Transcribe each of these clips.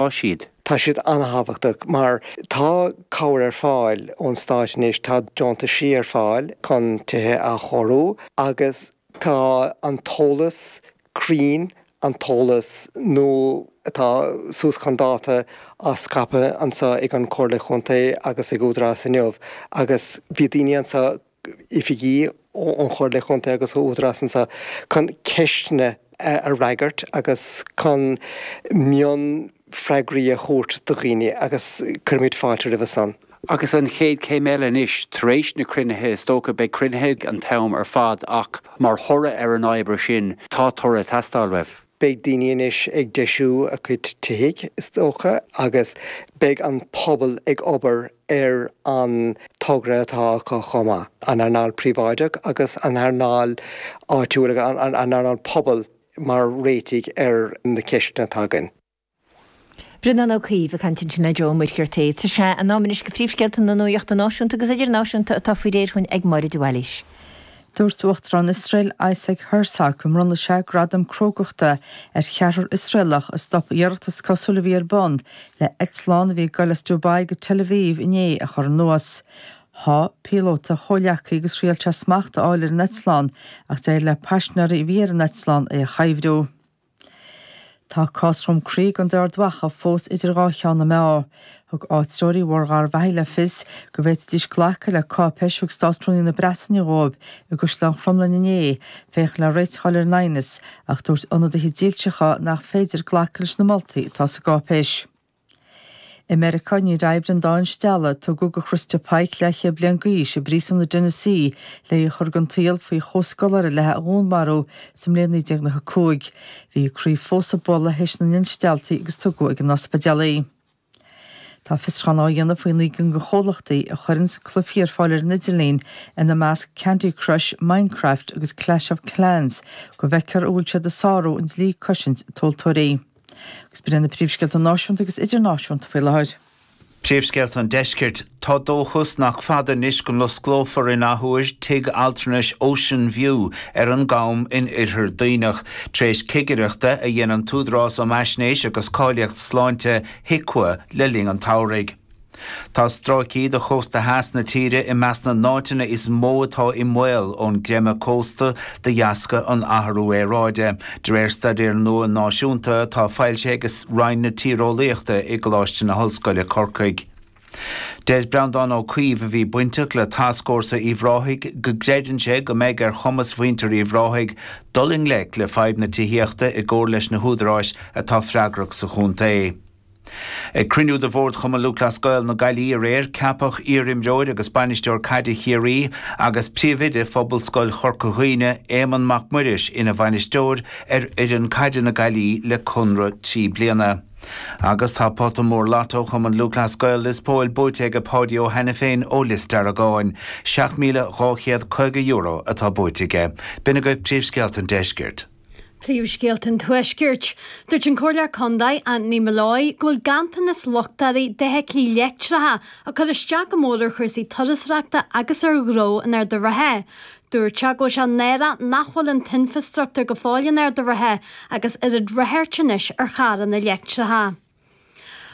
atá siad. Tá siad an-tábhachtach mar tá cabhair ar fáil ón stáit anois, tá deontaisí ar fáil chun tithe a athchóiriú agus tá an t-eolas cruinn, an t-eolas nua atá suas chun dáta á scaipeadh anso ag an Chomhairle Chontae agus ag Údarás inniu agus bhí daoine anso, oifigigh ón gComhairle Chontae agus ó Údarás anso chun ceisteanna a fhreagairt agus chun mionfhreagraí a thabhairt do dhaoine agus cuirimid fáilte roimhe san. Agus an chéad céim eile anois, tar éis na cruinnithe is dócha, beidh cruinnithe an t-am ar fad ach mar thoradh ar an obair sin tá toradh ag teastáil uaibh. Beidh daoine anois ag deisiú a gcuid tithe, is dócha, agus beidh an pobal ag obair ar an togra atá acu chomh maith, an earnáil phríobháideach agus an earnáil áitiúil, an earnáil pobail mar réitigh ar na ceisteanna atá againn. Breandán Ó Caoimh ag caint ansin le Joe Muircheartaigh. Tá sé in am anois do phríomhscéalta na nuachta náisiúnta agus idirnáisiúnta atá faoi réir dhúinn ag Máire de Bhailís. Dúirt Uachtarán Iosrael Isaac Herzog go mbronnfadh sé gradam crógachta ar cheathrar Iosraelach a stop iarracht is cosúil a bhí ar bun le eitleán a bhí ag dul as Dubai go Tel Aviv inné a chur anuas. Sháigh píolóta a chomhleacaí agus thriail sé smacht a fháil ar an eitleán ach d'éirigh le paisinéirí a bhí ar an eitleán é a chuibhriú. Tá cás Dhroim Crí i gContae Ard Mhacha fós idir dhá cheann na meá. Thug áitreoirí Bhóthar Gharbhachaidh le fios go bhféadfaidís glacadh le cáipéis a thug Státrúnaí na Breataine dhóibh i gCaisleán Chromghlinne inné, féachaint le réiteach a fháil ar an aighneas, ach dúirt ionadaithe dílseacha nach féidir glacadh leis na moltaí atá sa gcáipéis. I Meiriceá, níor oibrigh an dá instealladh a tugadh do Christa Pike leathchéad bliain d'aois i bpríosún i dTennessee le í a chur den tsaol faoi chomhscoláire léi a dhúnmharú sa mbliain 1995. Bhí a croí fós ag bualadh théis na n-instealltaí agus tugadh ag an ospidéal í. Tá fiosrúchán á dhéanamh faoi naoi gcinn de chomhlachtaí a chuireann cluichí ar fáil ar an idirlíon, ina measc Candy Crush, Minecraft agus Clash of Clans, go bhfeicfear an bhfuil siad ag sárú an dlí cosaint tomhaltóirí. Agus b'iad sin na príomhscéalta náisiúnta agus idirnáisiúnta faoi láthair. Príomhscéalta an Deiscirt, Tá dóchas nach fada anois go n-osclófar in athuair tigh altranais Ocean View ar an gCom in Oirthear Duibhneach, tar éis cigireachta a dhein an tÚdarás um Fhaisnéis agus Cáilíocht Sláinte, HIQA, le linn an tsamhraidh. Tá stráicí de chósta theas na tíre i measc na n-áiteanna is mó atá i mbaol ón gcreimeadh cósta de dheasca an athrú aeráide, de réir staidéir nua náisiúnta atá foilsithe ag Roinn na Tíreolaíochta i gColáiste na hOllscoile, Corcaigh. Deir Breandán Ó Caoimh, a bhí bainteach le Tascfhórsa Uíbh Ráthaigh, go gcreideann sé go mbeidh ar chumas mhuintir Uíbh Ráthaigh dul i ngleic le fadhb na tithíochta i gcomhar leis na húdaráis atá freagrach sa chontae. Ag cruinniú de Bhord Chumann Lúthchleas Gael na Gaillimhe aréir, ceapadh iar-imreoir agus bainisteoir caide Chiarraí agus príomhoide Phobalscoil Chorca Dhuibhne, Éamonn Mac Muiris ina bhainisteoir ar fhoireann caide na Gaillimhe le conradh trí bliana. Agus tá pota mór Lotto Chumann Lúthchleas Gael Lios Póil buaite aige Páidí Ó hAiniféin ó Lios Deargáin. €7,250 atá buaite aige. B'in agaibh príomhscéalta an deiscirt. Príomhscéalta an Tuaiscirt. Dúirt an Comhairleoir Contae, Anthony Molloy, go bhfuil ganntanas luchtairí d'fheithiclí leictreacha ag cur isteach go mór ar chúrsaí turasóireachta agus ar ghnó in Ard an Rátha. Dúirt sé go bhfuil sé náireach nach bhfuil an t-infreastruchtúr go fóill in Ard an Rátha agus oiread ráchairt anois ar charranna leictreacha.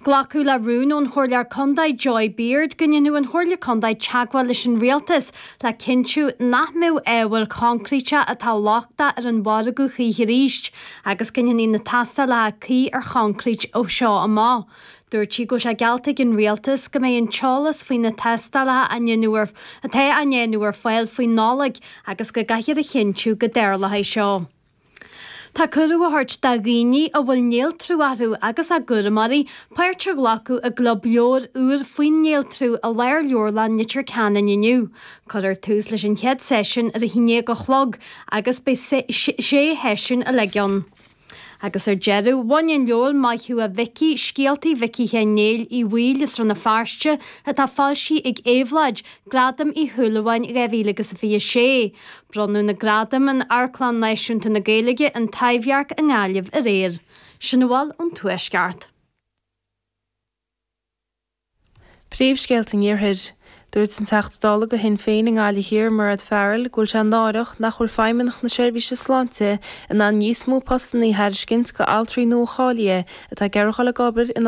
Glacadh le rún ón Chomhairleoir Contae Joy Beard go ndéanfadh an Chomhairle Contae teagmháil leis an Rialtas le cinntiú nach mbeadh ábhair choincríte atá lochtach ar an mhargadh choíche arís agus go ndéanfaí na tástálacha cuí ar choincrít ó seo amach. Dúirt sí go bhfuil sé geallta ag an Rialtas go mbeidh an t-eolas faoi na tástálacha á ndéanamh atá á ndéanamh ar fáil faoi Nollaig agus go gcaithfear a chinntiú go dtarlóidh seo. Tá cuireadh á thabhairt do dhaoine a bhfuil néaltrú orthu agus a gcúramóirí, páirt a ghlacadh i gclub leabhar úr faoin néaltrú i Lárleabharlann Leitir Ceanainn inniu. Cuirfear tús leis an chéad seisiún ar a haon déag a chlog agus beidh sé sheisiún uilig ann. Agus ar deireadh, bhain an leabhar Maith Thú a Mhicí, Scéaltaí Mhicí Sheáin Néill Uí Bhaoill as Rann na Feirste, atá foilsithe ag Éabhlóid, Gradam Uí Shúilleabháin 2026. Bronnadh na gradaim in Amharclann Náisiúnta na Gaeilge, an Taibhdhearc i nGaillimh aréir. Sin a bhfuil ón Tuaisceart. Príomhscéalta an Iarthair. Dúirt an Teachta Dála do Shinn Féin i nGaillimh Thiar Mairéad Farrell go bhfuil sé náireach nach bhfuil Feidhmeannacht na Seirbhíse Sláinte in ann níos mó postanna a thairiscint do altraí nua-cháilithe atá ag iarraidh a dhul ag obair in